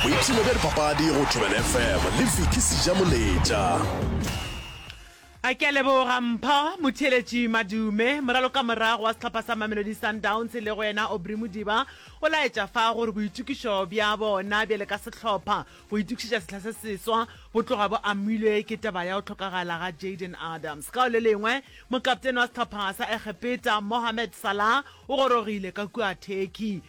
boipshino bja dipapadi go thobela fm le viki seja moletša a ke a leboga mpho motheeletši madume moralo ka morago wa sehlopha sa mamelodi sundowns le go yena obry modiba o laetša fa gore boitokišo bja bona bjale ka sehlopha go itokišetša sehla se seswa bo tloga bo amilwe ke taba ya go tlhokagala ga jaden adams ka o le lengwe mokaptene wa sehlopha sa egepeta mohamed salah o gorogile ka kua turkey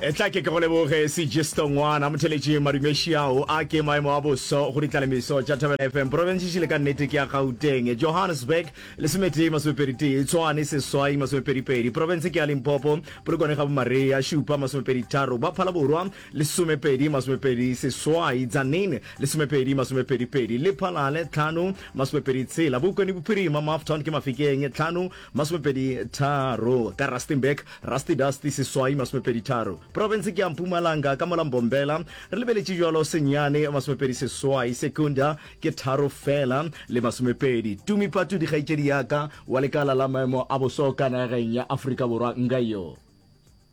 Etla ke ke go leboge Sigisto Ngwana, motheletši madumeši ao a ke maemo a boso go ditlalemiso tša Thobela FM. Profense šele ka nnete ke ya Gauteng, Johannesburg, lesometee masomepedi tee, Tshwane, seswai, masomepedi pedi, Profense ke ya Limpopo, Polokwane ga Bomaria, šupa, masomepedi tharo, ba Phalaborwa, lesomepedi, masomepedi seswai, Tzaneen, lesomepedi, masomepedi pedi, Lephalale, tlhano, masomepedi tshela, Bokone Bophirima, Mafton ke Mafikeng, tlhano, Masomepedi tharo, ka Rustenburg, Rusty Dusty Seswai Masomepedi tharo, Profense ke ya Mpumalanga ka mola Mbombela re lebeletše bjalo Senyane Masomepedi seswai, Secunda ke tharo fela le masomepedi. Tumi Patudi kgaetšedi ya ka wa lekala la maemo a boso ka nageng ya Afrika Borwa, Ngaio.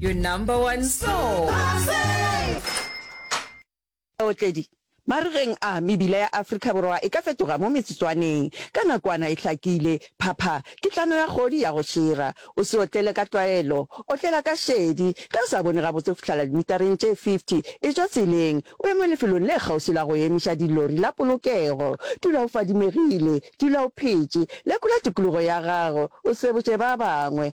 Your number one soul. Baotledi, Marigeng a, mebila ya Afrika Borwa e ka fetoga mo metsotswaneng. Ka nakwana e hlakile, phapha, kitlano ya kgodi ya go šira. O se otlele ka tlwaelo. Otlela ka šedi. Ge o sa bone gabotse go fihlala dimitareng tše 50, e tšwa tseleng, o eme lefelong le kgauswi la go emiša dilori la polokego. Dula o fadimegile. Dula o phetše. Lekola tikologo ya gago. O sebotše ba bangwe.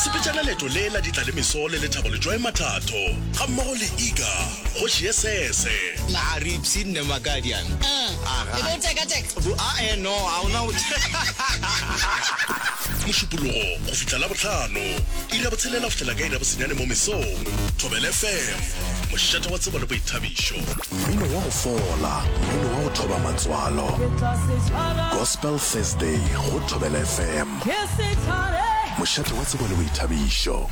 Sepetšana leeto le la ditla le meso le lethabo Letšwae Mathatho ga mmogo le Iga kgoši ye sese. Naa re ipshinne Makadian? Aa, e be o tekateka? Bo, aa no, a o na o Mošupologo go fihla Labohlano, iri ya botshelela go fihlela ka iri ya bosenyane mo mesong. Thobela FM, mošeta wa tsebo le boithabišo. Mmino wa go fola, mmino wa go thoba matswalo. Gospel Thursday go Thobela FM. Mošate wa tsebo le boithabišo.